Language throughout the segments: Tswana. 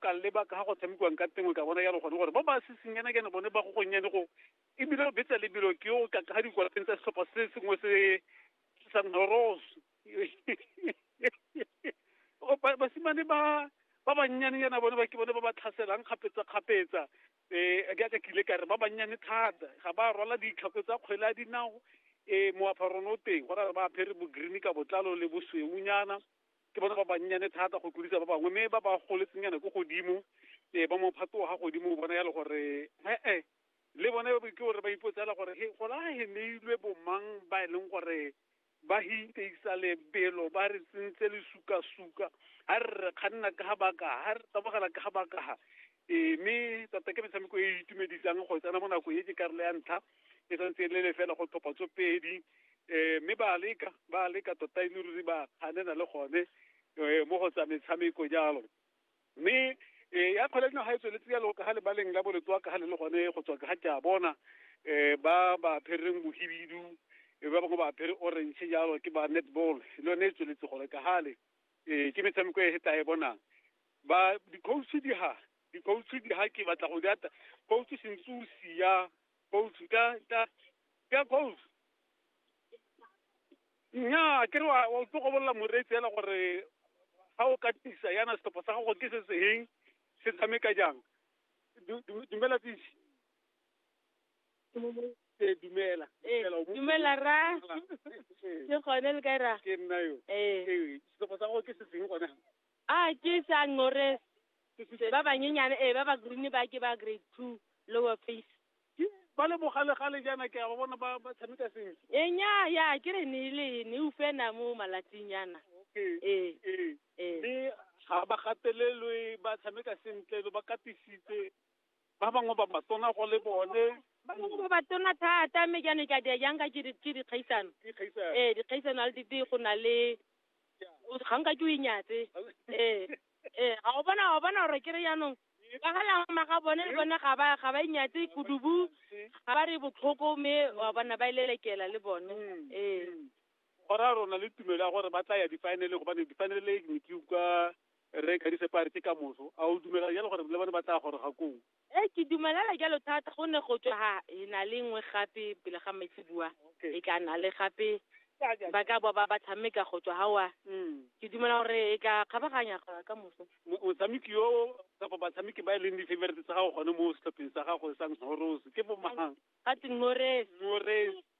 ka leba ka ga go tshamekiwang ka tengwe ka bona yalo gone gore ba ba sesenyanakene bone ba go gonnyane go ebile o betsa lebelo ke o ka ga dikwalapeng tsa setlhopha se sengwe se sa noros basimane ba ba bannyanenyana bone ba ke bone ba ba tlhaselang kgapetsa-kgapetsa um ke ka kile ka re ba bannyane thata ga ba rwala ditlhako tsa kgwele a dinao um moaparong o teng go ra ba apere bo-green ka botlalo le bosweunyana ke batho ba bannyane thata go tlodisa ba bangwe mme ba ba goletsenyana ko godimo um ba mophato wa ga godimo bona yalo gore e-e le bone ke gore ba ipotsela gore he go la he neilwe bomang ba e leng gore ba hinteisa lebelo ba re tsentse lesukasuka ga re re kganna ka ga bakaga ga re tabogela ka ga bakaga ee mme tota ke metshameko e e itumedisang go tsena mo nako e ke karolo ya ntlha e santse e le lefela go tlhopha tso pedi um mme ba leka ba leka tota e le ruri ba kganena le gone um mo go tsa metshameko jalo mme um ya kgwele dinaga e tsweletse jalo ka ga lebaleng la boletswa ka ga le le gone go tswa ka ga ke a bona um ba ba phereng bohibidu ba bangwe ba apere orange jalo ke ba netball le yone e tsweletse gore ka gale um ke metshameko e tla e bonang ba di-coach di ha di-coach di ha ke batla go di ata coach sentse o sia coach ka ka ka coach nnyaa ke re wa wa tlo go bolela moreetsi ela gore ga o ka tisa yana setlhopha sa gago ke se seng se tshameka jang Du- du- dumela tisi ee dumela Eh, Dumela, o bo- dumela ra Ee, ke gone le ka ra ke nna yo ee ee setlhopha sa gago ke se seng gone A ke sa ngores. Se ba banyenyane e ba ba green ba ke ba grade 2 lower face. Ke ba le bogale gale jaana ke a ba bona ba ba tshameka sentle. E nya ya ke re ne le ne u fena mo malatsing yana. Okay. E. E. Mme ga ba gatelelwe ba tshameka sentle lo ba katisitse ba bangwe ba batona go le bone ba bangwe ba batona thata mme jaanong ka dia jang ka ke dikgaisano ee dikgaisano a le dite go na le ga nka ke o inyatse ee ee ga o bona ga o bona gore ke re jaanong ka ga lama ga bone le bone ga ba ga ba inyatse kudubu ga ba re botlhoko mme wa bona ba e lelekela le bone mm. ee go raya rona le tumelo ya gore ba tla ya difaeneleng gobane difaenele ne ke utlwa Rre Kadisepe a re ke ka moso. A o dumela jalo gore le bone ba tla goroga koo? Ee, ke dumelela jalo thata gonne go tswa ga e na le nngwe gape pele ga maitseboa e tla na le gape ba ka boa ba ba tshameka go tswa gawa. Ke dumela gore e tla kgabaganya ka moso. Motshameki yo kapa batshameki ba e leng di-favorite tsa gago gone mo setlhopheng sa gago sa Ngorose ke bo mang? Ga twe Ngorese. Ngorese.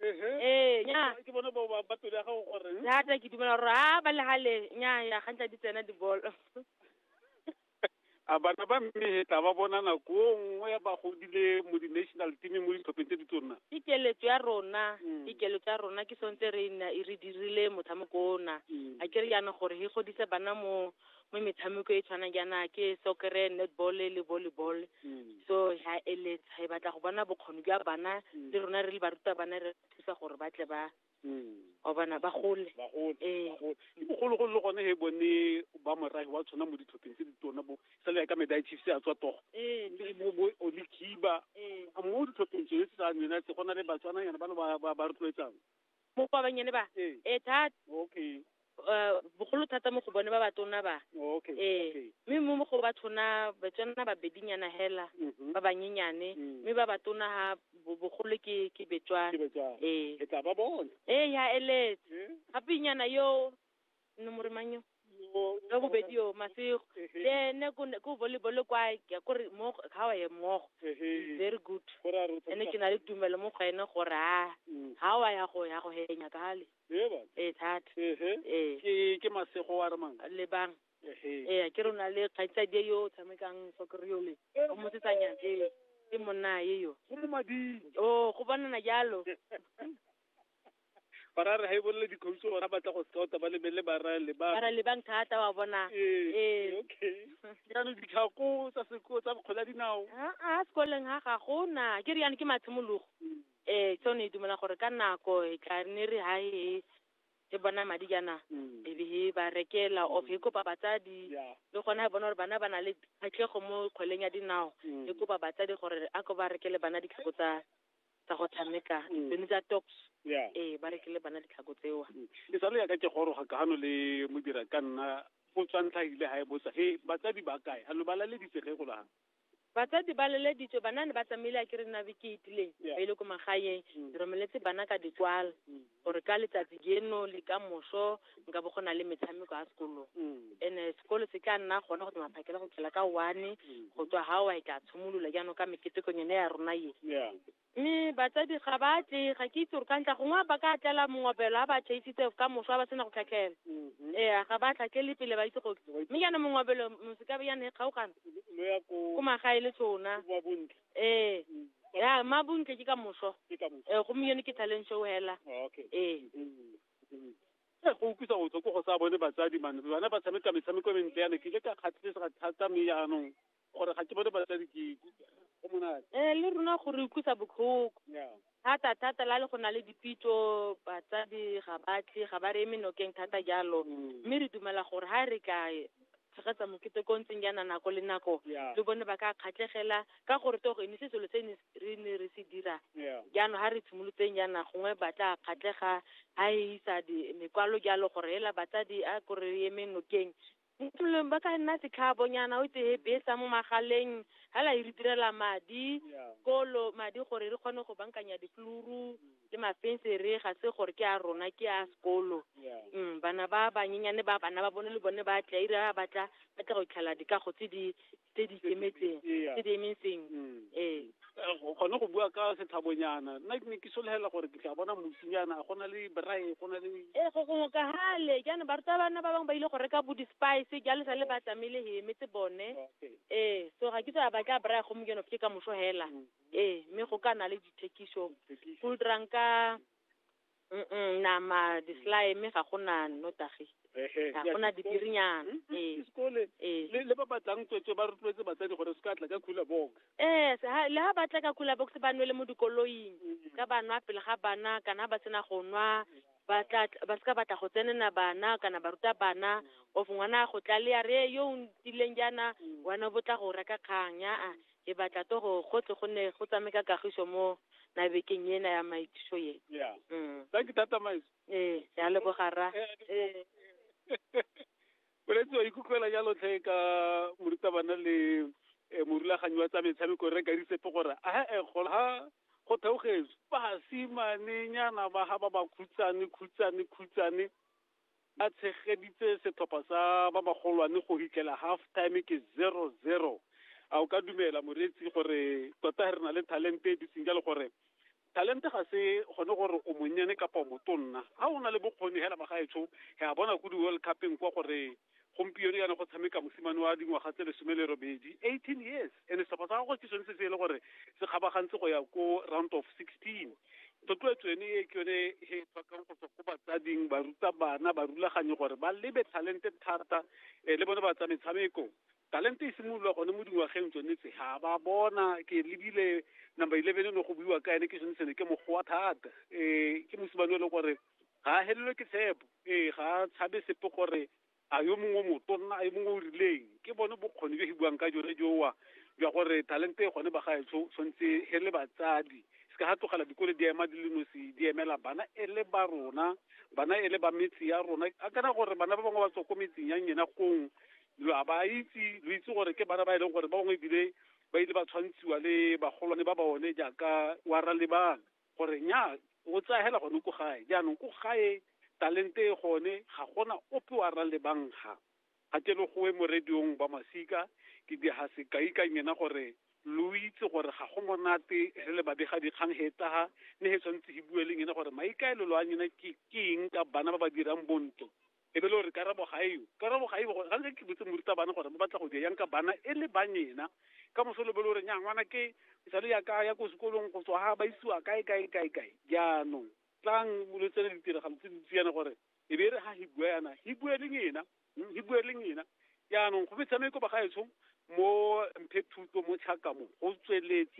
Ehe. ee nya Ke bona ba ba- ba pelo ya gago gore hmm? thata ke dumela gore a ba legale nya ya gantla di tsena dibolo a bana ba mme he tla ba bona nako o nngwe ba godile mo di-national teameng mo ditlhopheng tse di tsonna ke keletso ya rona Mm. ke keletso ya rona ke sontse re na e re dirile motshameko ona Mm. a ke re yana gore he godise bana mo mo metshameko e tshwana jaana ke soccer netball le volleyball mm. so ha eletsa e batla go bona bokgoni jwa bana mm. le rona re le baruta bana re thusa gore ba tle ba mm. wa bona ba gole ee. ke bogologolo le gone he bone ba morahi wa tshwana mo ditlhopheng tse di tona bo sa le ka meda chiefs a tswa togo ee. bo olikiba ee. mo ditlhopheng tsone tse tsa nena tse go na le batswana yana ba le ba rotloetsang mo ba bannyane ba Ee. ee thata okay eh, bogolo thata mo go bone ba batona ba okay ee okay mme mo mo go bathona batswana babedinyana hela Mhm. ba banyenyane Mm. mme ba batona ha bo- bogolo ke ke betswana Ke betswana. ee Ke tla ba bona ee ya eletse Eh? gapenyana yo no mo re mang yo ka bobedi yo masego le ene ko ne- ko volleyball kwa ke kore mo ga wa ye mmogo very good ene ke na le tumelo mo go ene gore a ga wa ya go ya go henya kale ee thata ee ke ke masego wa re mang le bang ee ke rona le kgaitsadi yo o tshamekang soccer yo le o mosetsanyana ee ke monna ye yo go mo mading o go bonana jalo barare ga e bolele dikhoutso ora batla go scouta ba lebele barale ba barale bang thata wa bona ee, ee. okay jaanong ditlhako tsa seko tsa bokgola dinao a a sekoleng ga ga gona ke re yana ke matshimologo um mm. tsone e dumela gore ka nako e tla ne re ha e e bona madi jaana mm. e be e ba rekela of e kopa batsadi le gona e bona gore bana ba na le kgatlhego mo kgweleng ya dinao e kopa batsadi gore a ko ba rekele bana ditlhako tsa tsa go tshameka Mm. tsone tsa tops ya ee ba rekile bana ditlhako tseo e sa le yaka ke goroga ka gano le modira ka nna go tswantlhagile ga e botsa he batsadi ba kae a lo ba laleditse ge go laga batsadi ba leleditswe banane ba tsamaile a ke re nna beke e itileng Yeah. ba ile ko magaeng Mm. re romeletse bana ka dikwalo Mm. or ka letsatsi jeno le ka moso nka bo go na le metshameko ya sekolong ene sekolo se tla nna gone go tsamaya phakela go tlhela ka one go tswa ga wa e tla tshimolola jaanong ka meketekong yone ya rona ye mme batsadi ga ba tle ga ke itse gore ka ntla gongwe ba ka tlela mongobelo a ba chaisitse ka moso a ba sena go tlhatlhela ee ga ba tlhatlhele pele ba itse goke mme jaanong mongobelo mosekabe jaanong e kgaogana ko magae le tshona ee ya ma bontle ke ka moso ee gompieno ke talent show hela ee Eh, go utlwisa botlhoko go sa bone batsadi mane bana ba tshameka metshameko e mentle yana ke ile ka kgatlhesega thata mme jaanong gore ga ke bone batsadi ke ke- go monate ee le rona gore utlwisa botlhoko ya thata thata la le go na le dipitso batsadi ga ba tle ga ba re eme nokeng thata jalo mme re dumela gore ga re ka tshegetsa mokete ko ntseng jaana nako le nako le bone ba ka kgatlhegela ka gore togo e ne se selo se ne re ne re se dira jaanong ga re tshimolotseng jaana gongwe ba tla kgatlhega ga e isa di- mekwalo jalo gore hela batsadi a kore re eme nokeng Mo tulong ba ka nna setlhaabonyana o tseye besa mo magaleng hela e re direla madi kolo madi gore re kgone go bankanya ditluru le mafensere ga se gore ke a rona ke a sekolo um bana ba banyenyane ba bana ba bone le bone ba tla ira ba batla ba tla go itlhela dikago tse di tse di ikemetseng tse di emeng sengwe Mm. ee Eh, go- gone go bua ka setlhabonyana nna ke ne ke solegela gore ke tla bona mosinyana go na le brae go na le ee go gongwe ka gale jaanong barutabana ba bangwe ba ile go reka bo di-spice jalo sa le ba tsamaile he emetse bone Okay. ee so ga ke tsa ba tla braya gomo jeno ke ka moso hela ee mme go ka na le dithekiso Thekiso. go dirang ka Mm-mm, nama di-slime ga go na nnotagi Ehe, ga ya go na sekolo. dibirinyana Mm, mm, ee sekole. ee le le ba batlang tswetswe ba rotloetse batsadi gore se ka tla ka khula box ee se- ha- le ha ba tla ka kula box ba nwele mo dikoloing ka ba nwa pele ga bana kana ba sena go nwa ba tla ba seka batla go tsenena bana kana ba ruta bana of ngwana a go tlalea re yo o ntileng jaana wena bo tla go reka kgang yaa Ke batla to go go tle go ne go tsame ka kagiso mo nabekeng ena ya maithuso ye. Yeah. Mm. Thank you, Tata Miles. Ee, re a leboga rra. Ee. Boletsi wa ikutlwela jalo tlhe ka morutabana le eh, morulaganyi wa tsa metshameko re kadisepe gore a e gola ha go theogetswe basimanenyana ba ga ba ba khutsane khutsane khutsane ba tshegeditse setlhopha sa ba bagolwane go hitlela half time ke zero zero a o ka dumela moreetsi gore tota re na le talente e dutseng jalo gore talente ga se gone gore o monnyane kapa o motonna ga o na le bokgoni hela magaetsho ga bona ko di-world cupeng kwa gore gompieno yana go tshameka mosimane wa dingwaga tse lesome le robedi eighteen years and setlhopha sa gagwe ke sone se se e le gore se kgabagantse go ya ko round of sixteen thotloetso ene e ke yone e tlhokang go tswa ko batsading ba ruta bana ba rulaganye gore ba lebe talente thata um le bone ba tsa metshameko talente e simolola gone mo dingwageng tsone tse ga ba bona ke lebile number eleven e ne go buiwa ka ene ke sone sene ke mogowa thata um ke mosimane e le gore ga a helelwe ke tshepo ee ga a tshabe sepe gore a yo mongwe o motonna a yo mongwe o rileng ke bone bokgoni jo e buang ka jone jowa jwa gore talente e gone ba gaetsho tshwanetse he le batsadi se ka ga tlogela dikole di ema di le nosi di emela bana e le ba rona bana e le ba metse ya rona a kana gore bana ba bangwe ba tswa ko metseng ya nyena gong lo a ba itse lo itse gore ke bana ba e leng gore ba bangwe ebile ba ile ba tshwantshiwa le bagolwane ba bone jaaka wa ralebana gore nya o tsaya hela gone ko gae jaanong ko gae talente e gone ga gona ope wa ra lebangga ga ke le goe mo radiong ba masika ke diga sekai ka nyena gore lo itse gore ga go monate re le babega dikgang he taga ne he tshwanetse he bue le nyena gore maikaelelo a nyena ke eng ka bana ba ba dirang bonto e be le gore karabo ga eo karabo ga eo ga ke botse morutabana gore ba batla go dira yang ka bana e le banyena ka moso le bele gore nya ngwana ke sale ya ka ya ko sekolong go tswa ga ba isiwa kae kae kae kae jaanong tlang lo tsene ditiragalo tse dintsi yana gore e be re ga hi bua yana hi bua leng ena hmm, hi bua leng ena jaanong go metshameko ba ga etsong mo mphe thuto mo tšhaka mo go tsweletse